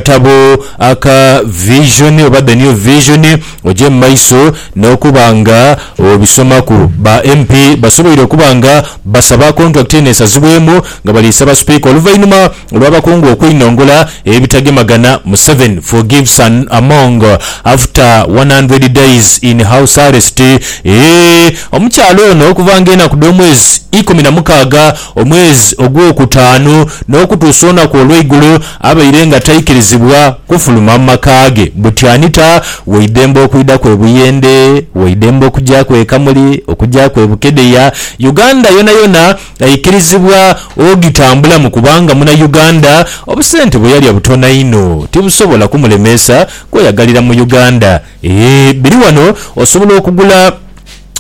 Akatabo aka Vision oba The New Vision oje mu maiso n'okuba nga obisomaku. Ba MP basoboire okuba nga basaba kontulakiti eno esazibwemu nga bali saba Sipiika oluvainhuma olw'abakungu okweinongola ebitagemagana Museveni forgives an Among after one hundred days in house arrest eeh Omukyala ono okuva nga enaku dh'omwezi ikumi na mukaaga omwezi ogw'okutaanu n'okutuusa onaku olweigulo Abaire nga taikirizibwa kufuluma mu maka ge buti anita, waidembe okwidaku e Buyende, waidembe okugyaku e Kamuli, okugyaku e Bukedea, Uganda yonayona aikirizibwa ogitambulamu kubanga muna Uganda, obusente bwe yalya butono inho tibusobola kumulemeesa kweyagalira mu Uganda. Eeh biri wano osobola okugula.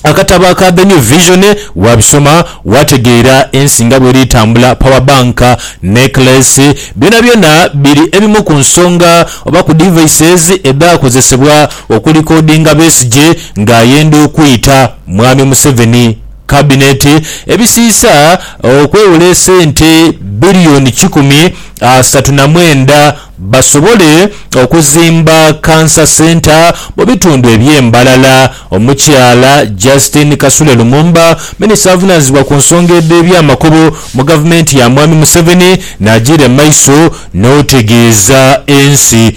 Akatabo aka The New Vision, waabisoma waategeera ensi nga bweri etambula. Power bank, necklace, byonabyona biri ebimu ku nsonga oba ku devices edhaakozesebwa okulikodinga Besigye ng'ayenda okwita Mwami Museveni Cabinet. Ebisiisa okwewola esente billion kikumi asatu na mwenda basobole okuzimba Cancer Centre mu bitundu eby'e Mbarara. Omukyala Justine Kasule Lumumba, minisita avunaanyizibwa ku nsonga edh'eby'amakubo mu gavumenti ya Mwami Museveni n'agiire mu maiso n'otegeeza ensi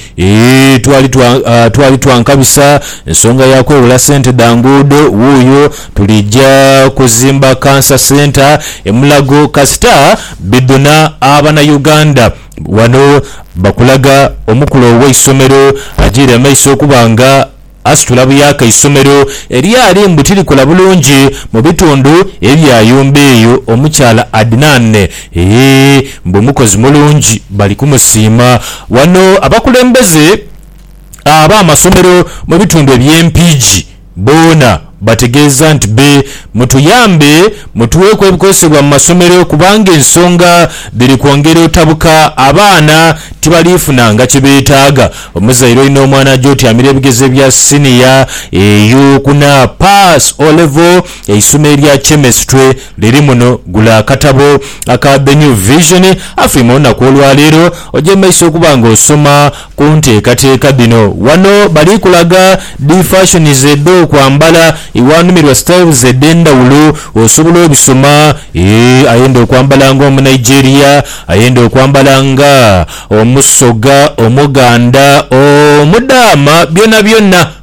Twali twankabisa nsonga ya kwewola ssente dha nguudo, wuuyo tulija kuzimba Cancer Centre e Mulago kasita bidhuna Abanayuganda. Ghano bakulaga omukulu ow'eisomero ajiire amaiso okuba nga asitula buyaaka eisomero eryali mbu tirikola bulungi mu bitundu ebya yumba eyo. Omukyala Adnan eeh mbu mukozi mulungi bali kumusiima. Ghano abakulembeze ab'amasomero mu bitundu eby'e Mpigi. Boona bategeeza nti be mutuyambe mutuweeku ebikozesebwa mu masomero kubanga ensonga dhiri kwongera otabuka abaana tibaliifuna nga kye beetaaga. Omuzaire olina omwana aja otyamira ebigezo ebya siniya eyo kuna Pass O Level eisoma erya Chemistry liri muno gula akatabo aka The New Vision afirm olunaku olwaleero oje mu maiso okuba nga osoma Ku nteekateeka dhino ghano bali kulaga dhi fashions edh'okwambala, iwanumirwa styles edh'endhawulo osobola obisoma eeh ayenda okwambala nga omunigeria, ayenda okwambala nga omusoga, omuganda, omudaama byonabyona.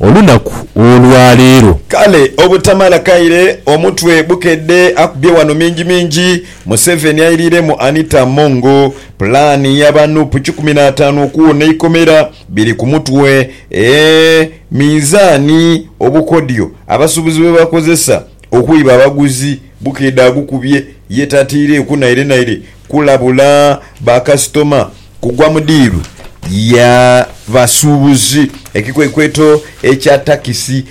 olunaku olwa leero. Kale obutamala kaire omutwe bukedde akubye wano mingi mingi Museveni airiiremu Anita Among. Pulaani yaba nup kikumi n'ataanu okuwona eikomera biri ku mutwe ee minzaani obukodyo abasuubuzi bwebakozesa okwiba abaguzi bukedde agukubye ye tataireeku naire naire kulabula ba kasitoma. Kugwa mu diiru ya basuubuzi, ekikwekweto ekya takisi.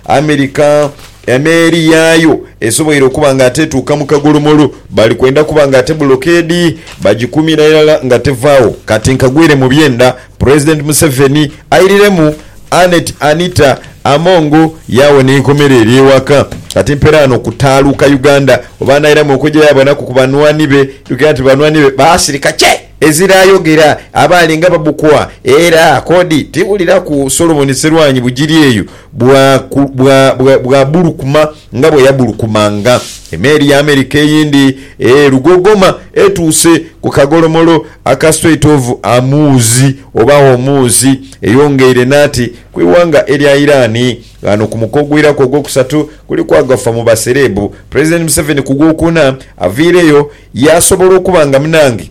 Amerika emeeri yaayo esoboire okuba nga ate etuuka mu kagolomolo, bali kwenda kuba nga ate bulokeedi bagikuumira irala nga tevaagho. Kati nkagwire mu byenda Pulezidenti Museveni airiremu Annet Anita Among yawo n'eikomera erye ewaka kati mperaano kutaaluuka Uganda oba anairamu okwejayo abanaku ku banhwani be tukirira nti banhwani be baasirika kye ezira ayogera abaali nga babukwa era kodi tiwuliraku Solomon Serwanyi Bugiri eyo bwa bwa bwa bwabulukuma Nga bwe yagulukumanga, emeeri ya Amerika eyindi e Lugogoma etuuse ku kagolomolo aka Strait of Hormuz oba Hormuz, eyongeire n'ati ku ighanga erya Iran. Ghano ku muko ogwiraku ogwokusatu kuliku agafa mu basereebu. Pulezidenti Museveni ku Gwokuna aviireyo yaasobola okuba nga munange.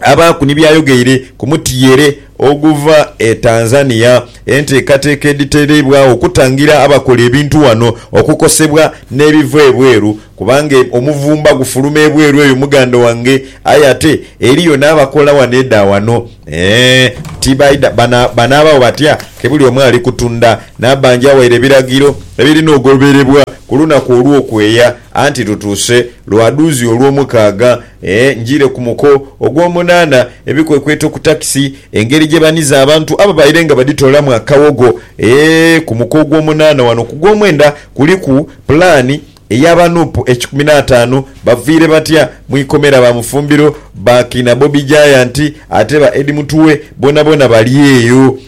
abaaku ni by'ayogeire ku mutyeere oguva e Tanzania, enteekateeka edhiteereibwagho okutangira abakola ebintu ghano okukosebwa n'ebiva ebweru kubanga omuvumba gufuluma ebweru eyo muganda wange aye ate eriyo n'abakola ghano edha ghano eeh tibaidha bana banaabagho batya ke buli omu ali kutunda Nabangi awaire ebiragiro ebirina ogoberebwa ku lunaku olw'okweeya anti lutuuse lwa dhuuzi olw'omukaaga Ee, njiire ku muko ogw'omunaana, ebikwekweto ku takisi, engeri gye baniza abantu ababaire nga badhitoolamu akawogho. Ee, ku muko ogw'omunaana wano ku gw'omwenda kuliku pulaani eya ba Nup ekikumi n'ataanu. Baviire batya mu ikomera ba Mufumbiro, ba kiina Bobi Giant ate ba Eddie Mutuwe boonaboona bali eyo.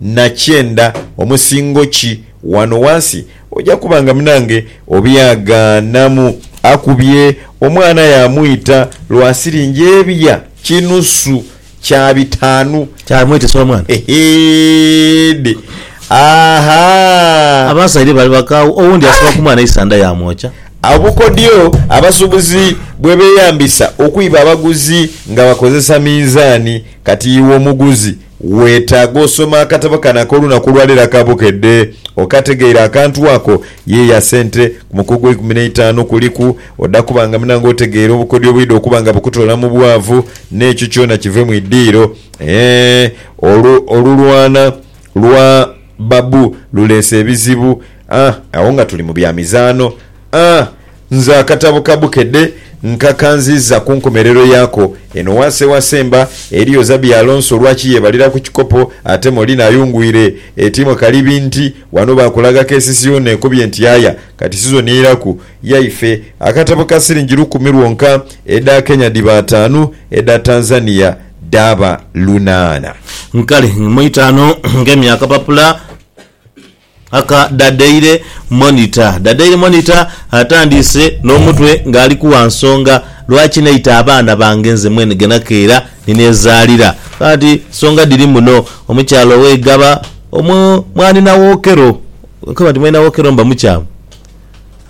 na kyenda omusingo ki ghano ghansi, oja kuba nga munange obyagaanamu. Akubye omwana yaamwita lwa siringi ebya kinusu kya bitaanu. Kyamwitisa omwana? Eheede! Ahaa! Abasaidha bali bakaawu, owundi yasiba ku mwana eisanda yaamwokya. Obukodyo abasuubuzi bwe beeyambisa okwiba abaguzi nga bakozesa minzaani. Kati iwe omuguzi Weetaaga osoma akatabo kano ak'olunaku olwaleero aka Bukedde okategeire akantu ako ye ya sente ku muko ogweikumi n'eitaanu kuliku oda kuba nga munange otegeire obukodyo obwidha okuba nga bukutoola mu bwavu n'ekyo kyona kive mu idiiro eeh olu olulwana lwa babu luleese ebizibu aah agho nga tuli mu bya mizaano aah Nze akatabo ka Bukedde nkakanziiza ku nkomerero yaako. Eno wansi ewasemba eliyo Zabi Alonso lwaki yebalira ku kikopo ate Molina ayungwire. Etiimwe kalibi nti wano baakulaga KCC yoona ekobye nti yaya. Kati sizoni eiraku yaife. Akatabo ka siringi lukumi lwonka, edha Kenya dhiba ataanu, edha Tanzania dhaaba lunaana. Kale mu itaanu ng'emya akapapula. Aka Da Daily Monitor. Da Daily Monitor atandiise n'omutwe ng'ali ku Wa Nsonga lwaki naita abaana bange nze mwene ghe nakeera ni neezaalira. Agamba nti, Nsonga dhiri muno. Omukyala owe Igaba omwo mwali na Wokero. Nkaba nti mwali na Wokero mba mukyamu.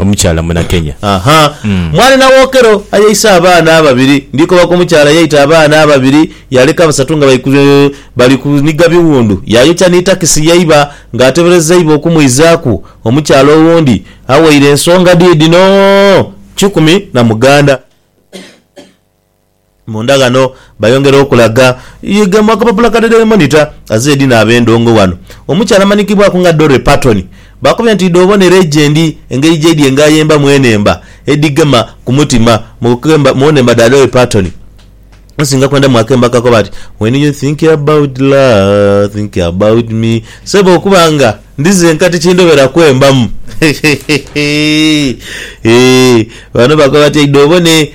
omukyala Munakenya. Mwali na Wokero ayeisa abaana ababiri. Ndikoba ku mukyala eyaita abaana ababiri, yaaleka basatu nga bali kuniga biwundu, yaayokya ni takisi ye iba ng'ateberezeibwa okumwizaaku omukyala owundi aweire ensonga dhi dhino kikumi na muganda. Munda ghano bayongera okulaga ghe mu akapapula ka The Daily Monitor azira edhi naaba endhongo ghano. Omukyala amanhikibwaku nga Dorrey Paton baakubye nti idhi obone legendi engeri gyaidhi enga ayemba mu enhemba edhigema ku mutima mu nhemba dha Dorrey Paton nsinga kwendamu akemba kakoba nti When you think about love, think about me Ssebo okuba nga ndi zenka tikindhobera kwembamu Hehehehe Eeh Bano bakoba nti idhi obone.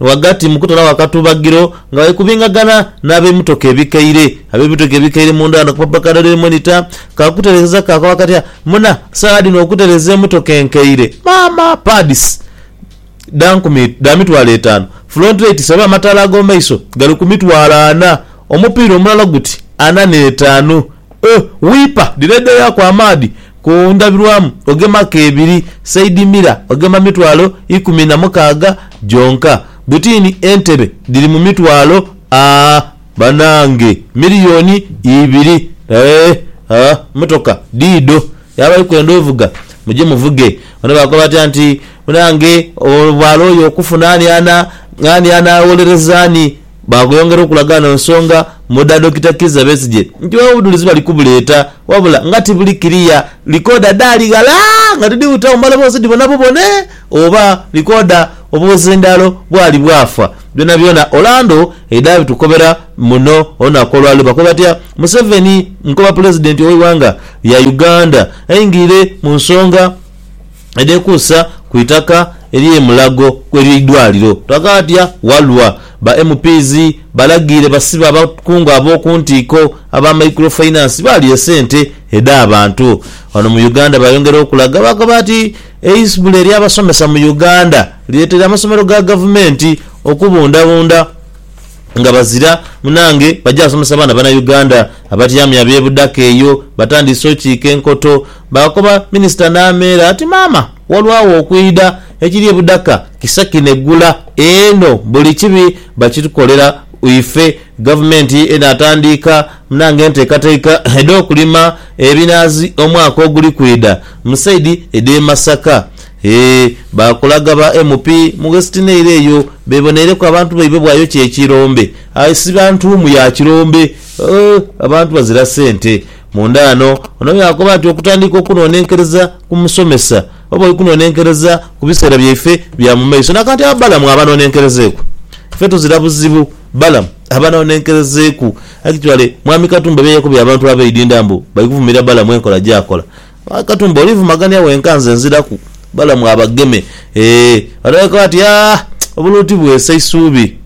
Ghagati mu kutoolawo akatubagiro nga bali kubingagana n'abemotoka ebikaire. Abemotoka ebikaire munda ghano akapapula ka Daily Monitor ka kutereeza kakoba kati muna saagha dhino okutereeza emotoka enkaire maama! Pads dha nkumi dha mitwalo etaanu, front lights oba amataala ag'omumaiso gali ku mitwalo ana, omupiira omulala guti ana n'etaanu. O wiipa direedha yaaku amaadhi ku ndhabirwamu, ogemaku ebiri, saidi mira ogema mitwalo ikumi na mukaaga gyonka. Butini entebe dhiri mu mitwalo a banange miriyoni ibiri. Eeh a mmotoka diidho. Yaaba ali kwenda ovuga, muje muvuge. Bano baakoba batya nti, Munange obwala oyo okufuna ani anaawolereza ani? Baagweyongera okulaga eno nsonga mu dha Dokita Kizza Besigye nti bawe obudhulizi bali kubuleeta wabula nga tibuli kiriya, likooda dhaali ghala nga tidhibutawo mbale oba ozidhibona bubone oba likooda obuzindaalo bwali bwafa. Byonabyona Orlando edhaabitukobera muno olunaku olwaleero bakoba batya Museveni nkoba Pulezidenti ow'eighanga lya Uganda aingirire mu nsonga. edhekuusa ku itaka ery'e Mulago ery'eidwaliro, Twakaatya Walwa. Ba MPs balagiire basibe abakungu ab'oku ntiiko aba Micro Finance baalya esente edh'abantu. Ghano mu Uganda baayongera okulaga baagaba nti eisbula ery'abasomesa mu Uganda lireeteire amasomero ga gavumenti okubundhabundha. nga bazira munange baja somesa baana bana Uganda abatyamye abe budaka eyo batandiise okiika enkoto bakoba minister nameera ati maama walwawo okwidha ekiri ebudaka kisa kineggula eno buli kibi bakitukolera ife gavumenti eno atandiika munange enteekateika edhokulima ebinaazi omwaka oguli kwidha musaidi edhe Masaka Ee, baakulaga ba MP mu Westnail eyo beeboneireku abantu baibwe bwayokya ekirombe. Aye si ba ntuumu ya kirombe. Ooh, abantu bazira sente. Munda ghano, ono yaakoba nti okutandiika okunonenkereza ku musomesa oba oikunonenkereza ku biseera byaife bya mu maiso. Na kati abo Balamu abanonenkerezeeku? Ife tuzira buzibu Balamu abanonenkerezeeku. Actually, Mwami Katumba byayakoba abantu abeidinda mbu baikuvumirira Balamu enkola gyakola, Aye Katumba olivumagania wenka nze nziraku balamu abageme eeh bano bali koba nti aah obuluuti bwesa isuubi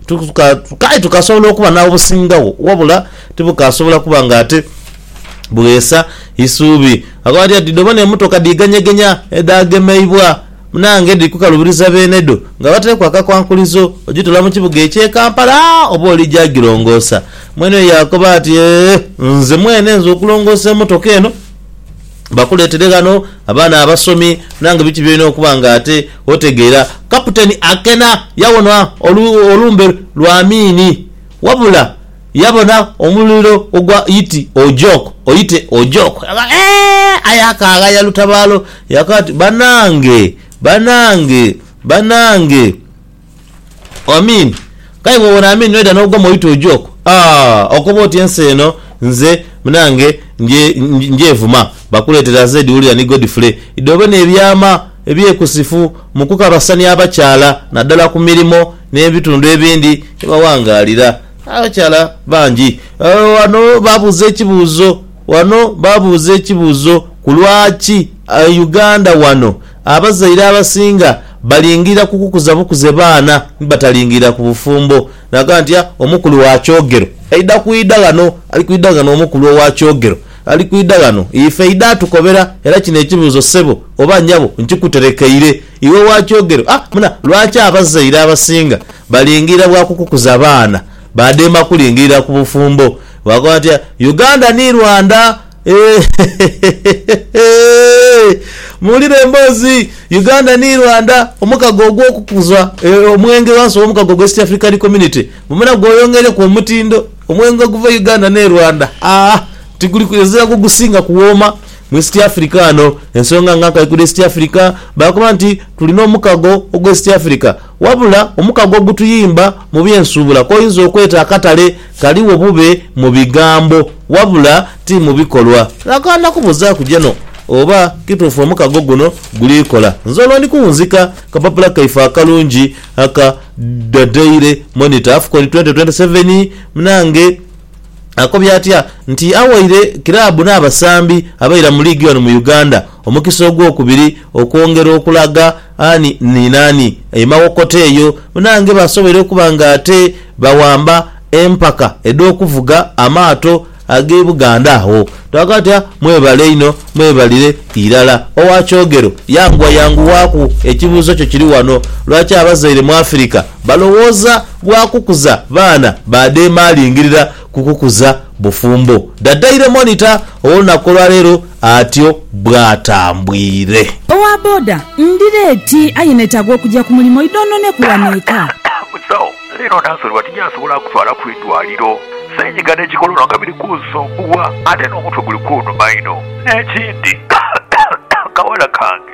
kale tukasobola okuba n'obusingagho wabula tibukasobola kuba nga ate bwesa isuubi. Akoba nti ati dhobona emotoka dhiganyegenya edhaagemeibwa munange dhiri kukalubiriza beenedho nga bataireku akakwankulizo ogitola mu kibuga eky'e Kampala oba olija girongoosa. Mwene oyo yaakoba nti eeh nze mwene nze okulongoosa emotoka eno. bakuleetere ghano abaana abasomi nange biki by'olina okuba ng'ate otegeera. Kaputeni Akena yawona olumbe lwa Amiini wabula yabona omuliro ogwa Yiti Ojok, Oyite Ojok. Eeh! Aye akaagha yalutabaalo yaka ati, Banange! Banange! Banange! Amin. Kale bwobona Amin noidha nogwa mu oitwo oji okwo aah okoba oti ensi eno nze munange nje njevuma bakuletera Zed Wulira ni Godfrey idhobe nebyama ebyekusifu mukukabasania abakyala nadala ku mirimo nebitundu ebindi gyebawangalira abakyala bangi wano babuuza ekibuuzo wano babuuza ekibuuzo ku lwaki Uganda wano Abazaire abasinga balingirira ku kukuza bukuze baana ni batalingirira ku bufumbo. Naga nti, A, omukulu wa kyogero aidha kwidha ghano. Ali kwidha ghano omukulu owa kyogero. Ali kwidha ghano. Ife aidha atukobera. Era kino ekibuuzo, ssebo oba nyabo, nkikuterekeire. Iwe owa kyogero, a, muna, lwaki abazaire abasinga balingirira bwa kukukuza baana, baadema kulingirira ku bufumbo? Baakoba bati, A, Uganda ni Rwanda. Eehehehehehehehehe! Muwulire emboozi! Uganda ni Rwanda, omukago ogw'okukuza omwenge ghansi w'omukago gwa East African Community gubona gweyongeireku omutindo. Omwenge oguva e Uganda n'e Rwanda, aa, tiguli kwezira gwo gusinga kuwooma mu East Africa ghano. Ensonga nga nkaikulu East Africa baakoba nti, Tuli n'omukago ogw'East Africa. Wabula, omukago ogutuyimba mu by'ensuubula k'oyinza okweta akatale. Ghaligho bube mu bigambo wabula ti mu bikolwa. Nakaana kubuzaaku jeno oba kituufu omukago guno guli kola. Nze olwo ndi kuwunzika kapapula kaife akalungi aka The Daily Monitor Afcon twenty twenty seven Mnange akobye atya nti awaire kiraabu n'abasambi abaira mu liigi wano mu Uganda omukisa ogwokubiri okwongera okulaga Ani ni naani emawokota eyo? Munaange basoboire okuba nga ate bawamba empaka edh'okuvuga amaato ag'e Buganda agho. Twagamba tuti, Ah, mwebale inho, mwebalire irala. Owa kyogero, yanguwa yanguwaaku, ekibuuzo kyo kiri ghano, lwaki abazaire mu Afirika balowooza gwa kukuza baana ba dheemaalingirira? kukukuza bufumbo. Da Daily Monitor ow'olunaku olwaleero atyo bwatambwire. Owa boda, Ndi leeti aye netaaga okugya ku mulimo idhoononeku wano eka. Dokita Musawo leero nansonebwa tinjasobola kutwala ku idwaliro. Senyiga ne kikolono nga biri kunsumbuwa ate n'omutwe guli kunuma inho. N'ekindi, akawala kange